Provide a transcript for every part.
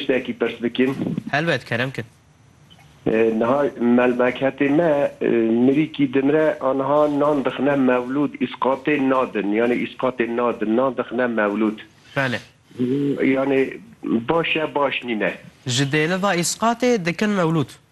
tiştekî pirs bikin? Helbet, kerem kin. Niha melmeketê me mirîkî dimre a niha nan dixine mewlûd îsqatê nadin yanî îsqatê nadin nan dixine mewlûd. Belê. Yanî baş e baş nîne. Ji dêliva îsqatê dikin mewlûd.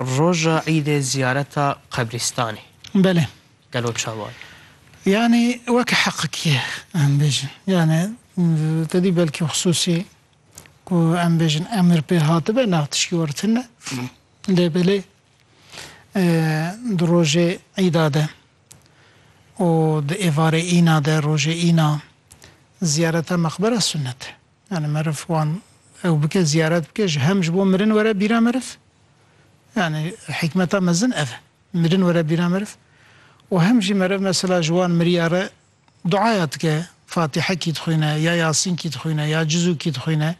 Roja îdê ziyareta qebrîstanê Belê. gelo çawa ye? Yanî weke heqik ye em bêjin. Yanî tedî belkî xisûsî ku em bêjin emir pê hatibe nav tişkî war tune ne. Lê belê di rojê îda de û di êvarê îna de rojê îna ziyareta meqbera sunet e. Yanî meriv wan ew bike ziyaret bike ji hem ji bo mirin were bîra meriv yanî hîkmeta mezin ev e mirin were bîra meriv û hem jî meriv mesela ji wan miriya re duaya dike fatîhekî dixwîne ya yasînkî dixwîne ya cizûkî dixwîne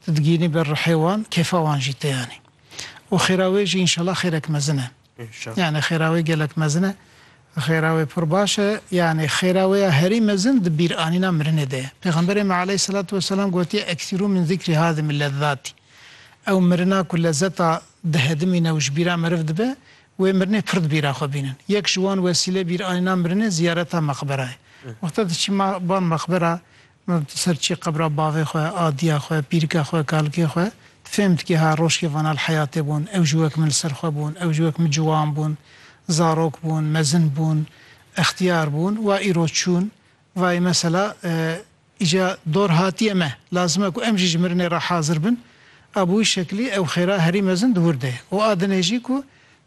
tu digînî ber rihê wan kêfa wan jî tê yanî û xêra wê jî înşela xêrek mezin e. Yanî xêra wê gelek mezin e. Xêra wê pir baş e. Yanî xêra wê ya herî mezin di bîranîna mirinê de ye. Pêxemberê me aleyhîsselatu weselam gotiye, Eksîrû min zîkrî hadimî lezzatî. Ew mirina ku lezzeta dihedimîne û ji bîra meriv dibe, wê mirinê pir di bîra xwe bînin. Yek ji wan wesîleyê bîranîna mirinê ziyareta meqbera ye. Wexta diçî van meqbera Maf di ser çi qebra bavê xwe, adiya xwe, pîrika xwe, kalkê xwe? Tu fêm dikî ha roşkêvana li heyatê bûn, ew ji wek min li ser xwe bûn, ew ji wek min ciwan bûn, zarok bûn, mezin bûn, extiyar bûn, wa îro çûn, vayê mesela îca dor hatiye me, lazim e ku em jî ji mirinê re hazir bin, a bi wî şekilî ew xêra herî mezin di wir de ye û a dinê jî ku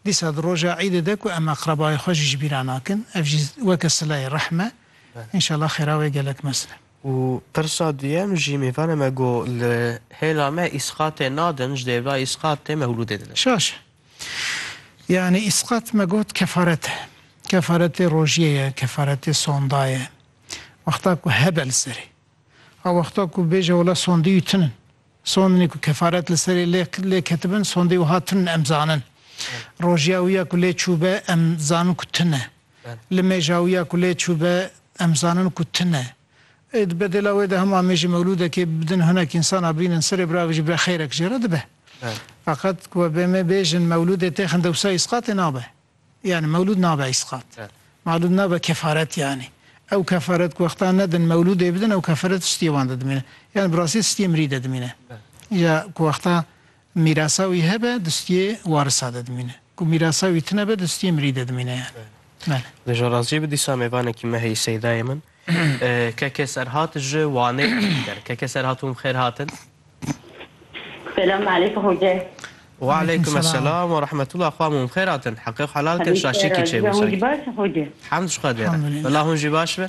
dîsa di roja îdê de ku em aqrebayê xwe jî ji bîra nakin, ev jî weke sileyê rehm e. Înşallah xêra wê gelek mezin e. Û pirsa duyem jî mêvana me got li hêla me îsqatê nadin ji dêrva îsqatê mewlûdê didin. Şaş e. Yanî îsqat me got kefaret e. Kefaretê rojiyê ye, kefaretê sonda ye. Wexta ku hebe li serê. A wexta ku bêje wela sondîyû tun in. Sondinê ku kefaret li serê lê lê ketibin sondê wiha tun in em zanin. Rojiya wî ya ku lê çûbe em zanin ku tun e. Li mêjawiya ku lê çû be em zanin ku tune. Di bedêla wê de hem amêjî mewlûdekê bidin hinek însan a bînin serê bira ve jî bire xêrek jê re dibe. Feqet ku wê me bêjin mewlûdê têxin dewsa îsqatê nabe. Yanî mewlûd nabe îsqat. Mewlûd nabe kefaret yanî. Ew kefaret ku wextan nedin mewlûdê bidin ew kefaret tiştiyê wan de dimîne. Yanî bi rastî tiştiyê mirî de dimîne. Ya ku wexta Mîrasa wî hebe di stûyê warisa de dimîne ku mîrasa wî tune be di stûyê mirî de dimîne yani. Bele. Di jorazî bi dîsa mêvanekî me heyî Seydayê min keke serhat ji Wanê dît ker. Keke serhat hûn bi xêr hatin. Selam aleykum hoca. Wa aleykum eselam wa rahmetullah xwam hûn bi xêr hatin. Heqê xwe helal kin şaşîkî çêbû sanki. Hûn jî baş in hoca. Hemd ji Xwedê re. Bila hûn jî baş be.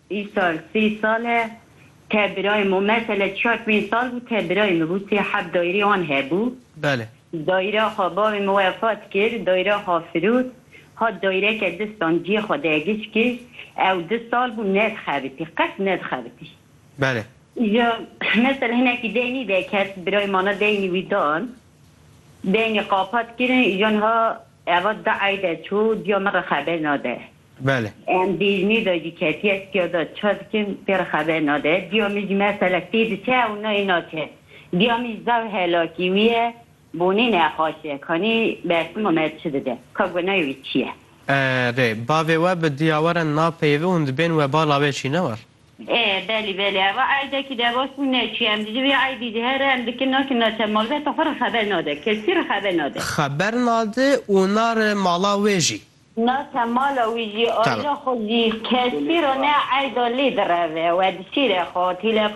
Îsal sî sal e te birayê min mesele çiya çwîn sal bû te birayê min bû sê heft daîrê wan hebû. Bele. Daîra xwe bavê min wefat kir daîra xwe firot hat daîreke distan ciyê xwe de giş kir ew du sal bû nedixebitî qet nedixebitî. Bele. Îja mesele hinekî deynî de ket birayê mana deynî wî dan deynî qapat kirin îja niha eva du ey de çû ciya min re xeber nade. Belê. Em bêjinî de jî ketiye tiya de çi dikin pê re xeber nade. Diya min jî meselek tê diçe û nayê naçe. Diya min jî zaf helakî wî ye. Bonê nexaş e. Kanî bersima me çi dide. Ka gunayê wî çi ye. Erê, bavê we bi diya we re napeyivî hûn dibên webala wê çî ne war? Ê, belê, belê. Eva eydekî de baş bû neçûye. Em ji vê eydê jî here em dikin nakin naçe. Malbata xwe re xeber nade. Kesî re xeber nade. Xeber nade û nare mala wê jî. Na te mala wî jî, ayîla xwe jî, keskî re ne eyda lê direve we di şîrê xwe, tîlefon.